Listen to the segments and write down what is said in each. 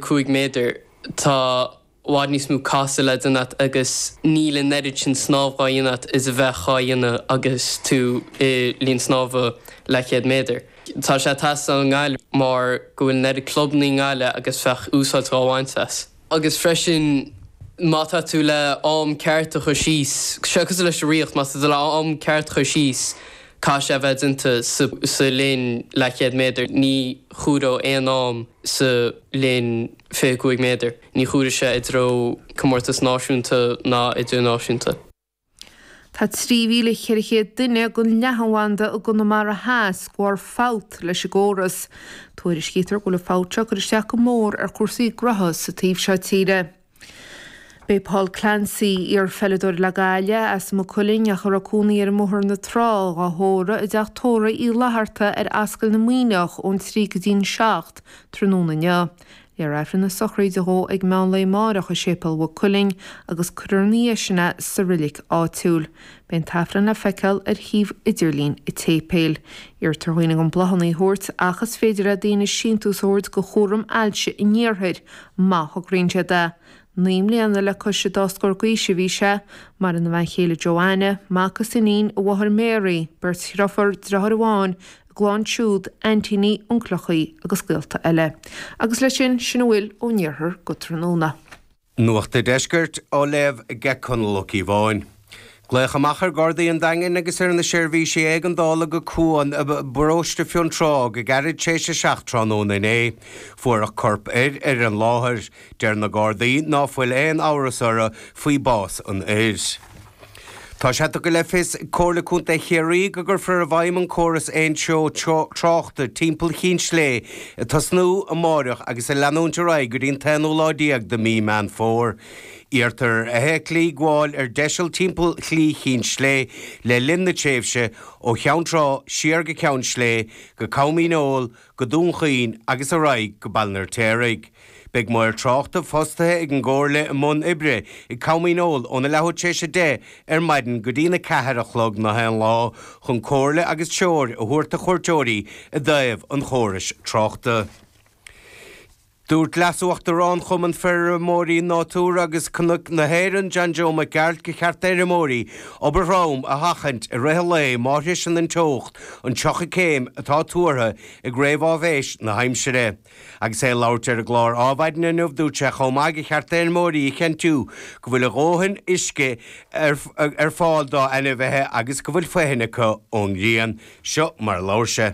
5 méadar, tá i bhfad níos mó casadh le déanamh agat agus níl an oiread sin snámh dhá dhéanamh agat is a bheadh dhá dhéanamh agus tú i linn snámha leathchéad méadar. Tá sé ag teastáil i nGaillimh mar go bhfuil an oiread clubanna i nGaillimh agus bheadh úsáid dhá bhaint as. Agus freisin má tá tú le am ceart a chur síos, sé cosúil leis an ritheacht, má tá tú le am ceart a chur síos, Caithfidh sé a bheith déanta sa linn leathchéad méadar. Ní chomhairfeadh aon am sa linn 25 méadar. Ní chomhairfeadh sé i dtreo comórtas náisiúnta ná idirnáisiúnta. Tá 3,400 duine gan leathanbhanda i gConamara Theas de bharr fabht leis an gcóras. Tuairiscítear go bhfuil an fabht seo ag cur isteach go mór ar chúrsaí gnótha sa taobh seo tíre. Beidh Paul Clancy, iarpheileadóir le Gaillimh, as Maigh Cuilinn ach a raibh cónaí air i mBóthar na Trá dhá thórramh i dTeach Tórraimh Uí Fhlaithearta ar Ascaill na Muimhneach ón 3 go dtí an 7 tráthnóna inniu. Léifear Aifreann na sochraide dhó ag meánlae amáireach i Séipéal Mhaigh Cuilinn agus cuirfear ina dhiaidh sin é sa reilig áitiúil. Beidh an tAifreann le feiceáil ar shuíomh idirlín an tséipéil. Iarrtar ar dhaoine gan bláthanna a thabhairt ach is féidir le daoine síntiús a thabhairt do Chúram Ailse an Iarthair má thograíonn siad é. Naoi mbliana le cois a dá scór d'aois a bhí sé. Maireann a bhean chéile Joanna, mac is iníon, a mháthair Mary, beirt dhrifiúr, driotháir amháin, a gclann siúd, aintíní, uncaileachaí agus gaolta eile. Agus leis sin, sin a bhfuil ón iarthar go tráthnóna. Nuacht an Deiscirt á léamh ag Conall Ó Cíobháin. Glaodh amach ar Ghardaí an Daingin agus ar na seirbhísí éigeandála go Cuan i bparóiste Fionntrá go gairid tar éis a 7 tráthnóna inné. Fuaireadh corp fir ar an láthair. Deir na Gardaí ná fuil aon amhras orthu faoi bás an fhir. Tá sé tugtha le fios ag Comhairle Contae Chiarraí go gcuirfear i bhfeidhm an córas aon treo tráchta timpeall Chinn Slé ag tosnú amáireach agus ag leanúint ar aghaidh go dtí an t-aonú lá déag de mí Meán Fómhair. Iarrtar ar fheithiclí gabháil ar deiseal timpeall Shlí Chinn Slé le linn na tréimhse ó Cheann Trá siar go Ceann Slé go Com Dhíneol, go Dún Chaoin agus ar aghaidh go Baile an Fheirtéaraigh. Beidh maor tráchta fostaithe ag an gComhairle i mbun oibre ag Com Dhíneol óna leathuair tar éis a deich ar maidin go dtí'na ceathair a chlog nach aon lá chun comhairle agus treoir a thabhairt do chuairteoirí i dtaobh an chórais tráchta. Dúirt Leas-Uachtarán Chumann Feirmeoirí Nádúir agus Cnoic na hÉireann, John Joe Mac Gearailt, gur cheart d'fheirmeoirí obair throm a sheachaint i rith an lae má shroiseann an teocht an 30 céim atá tuartha ag réamhaisnéis na haimsire. Agus é ag labhairt ar an gclár Adhmhaidin inniu, dúirt sé chomh maith gur cheart d'fheirmeoirí a chinntiú go bhfuil a dhóthain uisce ar fáil dá n-ainmhithe agus go bhfuil foithin acu ón ghrian. Seo mar a labhair sé.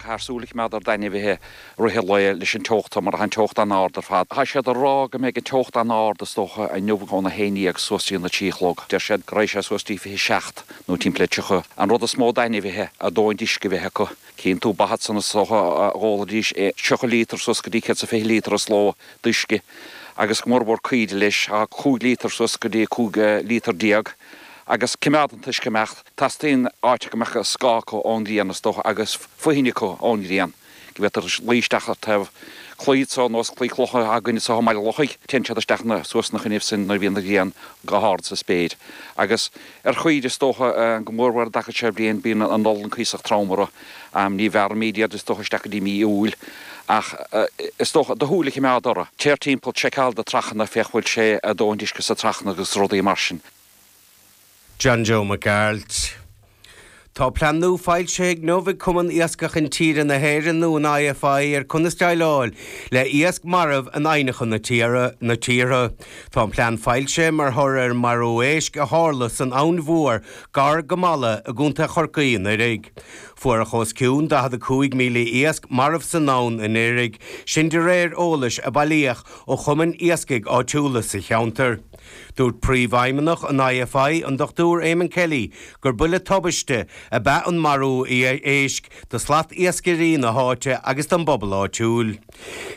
Caithfear súil a choimeád ar d'ainmhithe i rith an lae leis an teocht mar tá an teocht an-ard ar fad. Tá siad ag rá go mbeidh an teocht an-ard is dócha inniu ón 11 suas dtí'n 3 a chlog. Deir siad go raghadh sé suas dtí 27 nó timpeall 30. An rud is mó d'ainmhithe a ndóthain uisce a bheith acu. Cíonn tú ba ansan is dócha a dh'ólaidís 30 líotar suas go dtí 120 líotar sa ló d'uisce agus go mór mhór caoirigh leis 5 líotar suas go dtí 15 líotar. agus coimeád an t-uisce ag imeacht. Teastaíonn áit go mbeadh scáth acu ón ngrian, is dócha, agus foithin acu ón ngrian, go bhféadfaidh siad luí isteach ar taobh claí ar nós claí cloch tá againn anso i mBaile an Lochaigh, téann siad isteach suas ina choinnibh sin nuair a bhíonn an ghrian go hard sa spéir. Agus ar chaoirigh, is dócha, go mór mhór an dtaca so bliain, bíonn an olann cuíosach trom orthu. Ní bhearraimíd iad is dócha isteach go dtí mí Iúil ach is dócha, do shúil a choimeád orthu. Téir timpeall, seiceáil na trachanna, féach bhfuil a ndóthaint uisce sa trachanna agus rudaí mar sin. John Joe Mac Gearailt. Tá plean nua foilsithe inniu ag Cumann Iascaigh Intíre na hÉireann nó an IFI ar conas déileáil le iasc marbh in aibhneacha na tíortha. Tá an plean foilsithe mar thoradh ar an marú éisc a tharla san Abhainn Mhór, Gar go Mala i gContae Chorcaí anuiridh. Fuaireadh os cionn 45,000 iasc marbh san abhainn anuiridh, sin de réir eolais a bailíodh ó chumainn iascaigh áitiúla sa cheantar. Dúirt Príomhfheidhmeannach an IFI, an Dr Eamonn Kelly gur buille tubaiste ab ea an marú éisc do shlatiascairí na háite agus don bpobal áitiúil.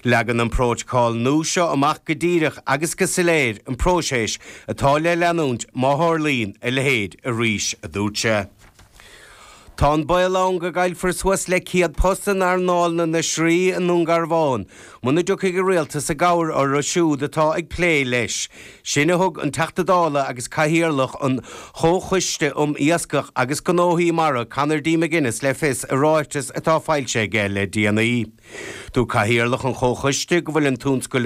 Leagann an Prótacal nua seo amach go díreach agus go soiléir an próiseas atá le leanúint má tharlaíonn a leithéid arís, a dúirt sé. Tá an baol ann go gcaillfear suas le 100 post in earnáil na n-oisrí i nDún Garbhán muna dtiocfaidh an Rialtas i gcabhair orthu siúd atá ag plé leis, Sin a thug an Teachta Dála agus Cathaoirleach an Chomhchoiste um Iascach agus Gnóthaí Mara Conor D McGuinness le fios i ráiteas atá foilsithe aige le déanaí. Dúirt Cathaoirleach an Chomhchoiste go bhfuil an tionscal i